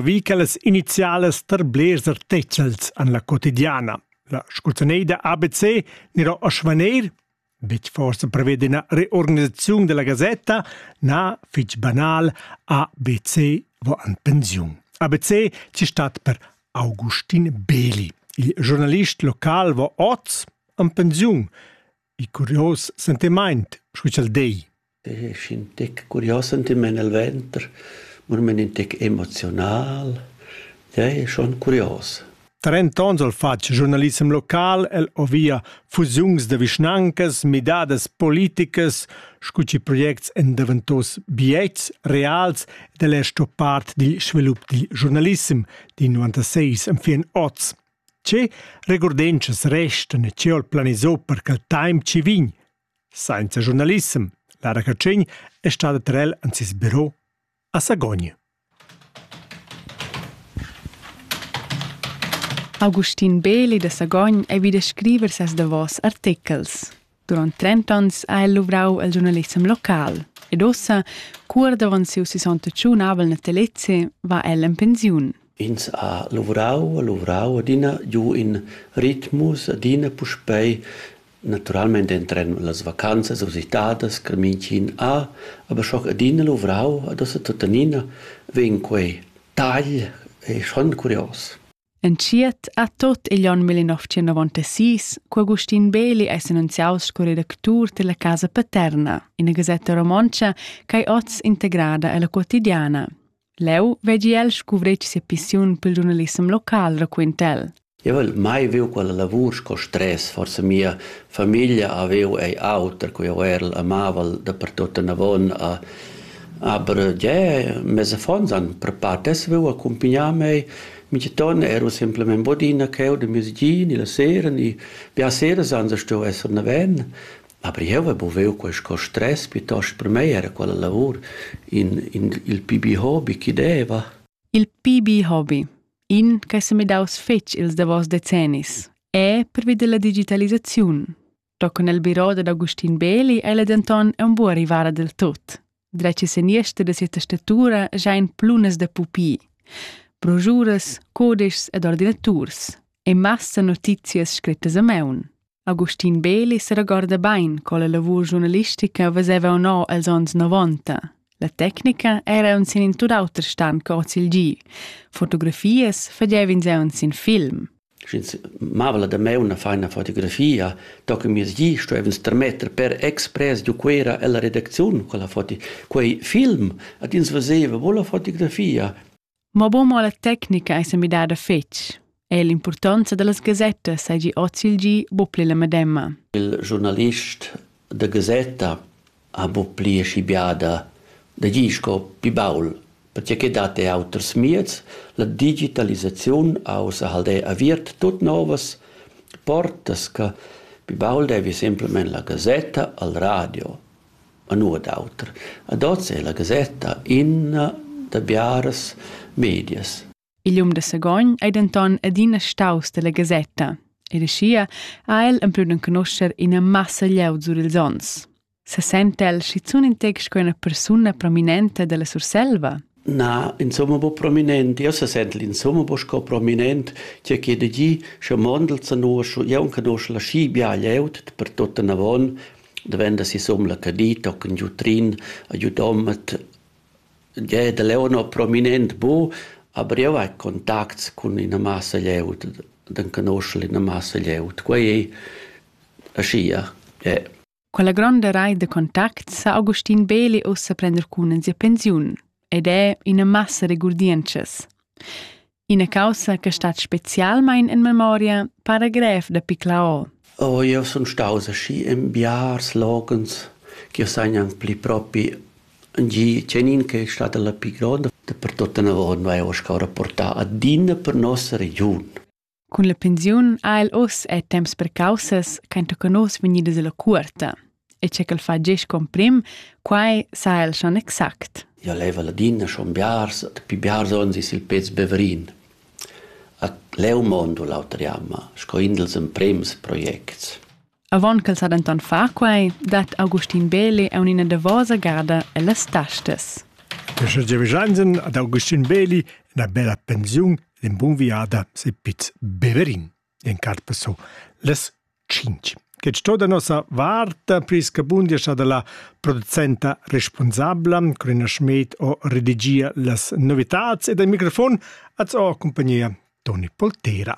vi quellas inizialas tar blers artechels an la quotidiana. La sculzaneida ABC nero a Schwaneir, betg forse prevede una reorganisazione della Gazzetta, na fitch banal ABC vo an pensiun. ABC ci stat per Augustin Beli. Il giornalist local vo oz an pensiun. Il curios sentimaint, scu cha'l dei. E schin tec curios sentimaint nel venter, murmen in tec emoziunal. Ja, è schon curios. Trent'ons al fatg giornalissem local el o via fusiuns da vischnancas, midadas politicas, scu chi projects en daventos biets reals ed el è sto part dil svilup dil giornalissem di 96 am fin oz. Tge regurdentschas restan e tge ha'l planisà per cha'l taimp chi vegn? Sainza giurnalissem, Lara Catschegn es stada ter el in seis büro a Sagogn. Augustin Beeli da Sagogn ei vi da scriver ses davos artechels. Durant trent'onns ha el luvrau el giurnalissem local ed ossa, cur davon siu sessantatschun abel natalezze, va el en pensiun. Ins ha lavorau e lavorau adina giu in ritmus, adina puspei naturalmente entren las vacanzas usitadas che mintgin ha, aber schon adina lavorau, ad ossa tuttenina vegn quei tagl, è schon curios. Entschiet ha tot igl onn millenovecentoventasís cu Agustin Beli ei s'annunziaus sco redactur dalla Casa Paterna, ina gasetta romontscha ch'ei oz integrada ella Quotidiana. Leu vegi el scuvretg sia pissiun pil giurnalissem local, raquenta el. Eu vel mai viu quella lavur sco stress, forsa mia famiglia avev ei auter, cu eu er'l amavel dapertut anavon a Aber ja, mes affons han prepar tesviu accumpagnar mei. Min geniton era semplamein bodina cheu da mes gin e la sera e bia sera san se stueu esser naven. Aber jeu haveva buviu quei stress piuttosto per mei era quella lavur in, in il pibi hobby che deva. Il pibi hobby, in che se mi daus fetg ils davos decennis, è pervi della digitalisaziun. Tochen el biro dad Augustin Beli è ella denton un buca rivara del tut. Dreci seniester de sia testatura jain plunas de pupi, brojuras, codeschs ed ordinaturs e massa notizias scrittas a meun. Augustin Beli se regorda bain co la lavur giornalistica veseva o no els ons 90. La tecnica era un sin in tut auter stan co hoz il gi. Fotografias fagevin se un sin film. sch'ins mava la damaun a far ina fotografia, do che mias gi stuevans termetter per express giu Cuera ella redacziun quella foto. Quei film ad ins veseva bo la fotografia. Mo bo mo la tecnica ei semidada fetg. E l'importanza dallas gasettas seigi oz il gi bo pli la medemma. Il giornalist da gasetta ha buc pli aschi biada da gir sco pli baul, pertgei che dat ei auters mieds. La digitalisaziun ha ussa halde aviert tut novas portas che pli baul devi semplamein la gasetta al radio e nuot auter. Ad oz è la gasetta ina da biaras medias. Il um da Sagogn ei denton adina staus dalla gasetta ed aschia ha el emplau d'enconoscher ina massa glieud sur ils onns. Sesenta el schizun in tec sco ina persuna prominenta dalla Surselva? Na, insomma bo prominent, io se sent insomma bo sco prominent, che che de gi, sche mondel sa noscio, io un canosce la schi bia glieud, per tutta navon, da venda si som la cadita, o can giu trin, a giu domat, Tgei da Leonor prominent bu, aber jeu hai contacts cun ina massa glieud, d'enconoscher ina massa glieud. Quei ei aschia, yeah. Quella gronda reit da contacts sa Augustin Beli ussa prender cun en sia pensiun ed è ina massa regurdientschas. Ina caussa che stat specialmein en memoria para grev da piclaol. Oh, io sun staus aschi in biars logens che sajan pli propi gi cenin che è stata la più grande per tutta una volta vai ho scaura portà adina per nossa regiun. Con la pensiun ha il us è temps per causas che in toca nos venidas alla curta. e che ch'el fa gest comprim, quai sa el schon exact. Io leva ladina schon biars, pi biars ons is il pez Beverin. A leu mondo l'auter jamma, sco indels emprems projects. Avon ch'el sa denton far quai, dat Augustin Beli a unina davosa garda ellas tastas. Questo Giovanni ad Augustin Beli una bella pensione, un buon viada se piz Beverin. in carpa su les cinc che sto da nossa varta priscabundia scha da la producenta responsabla Corina Schmid o redigia las novitats e dal microfon az ho compagnia Toni Poltera.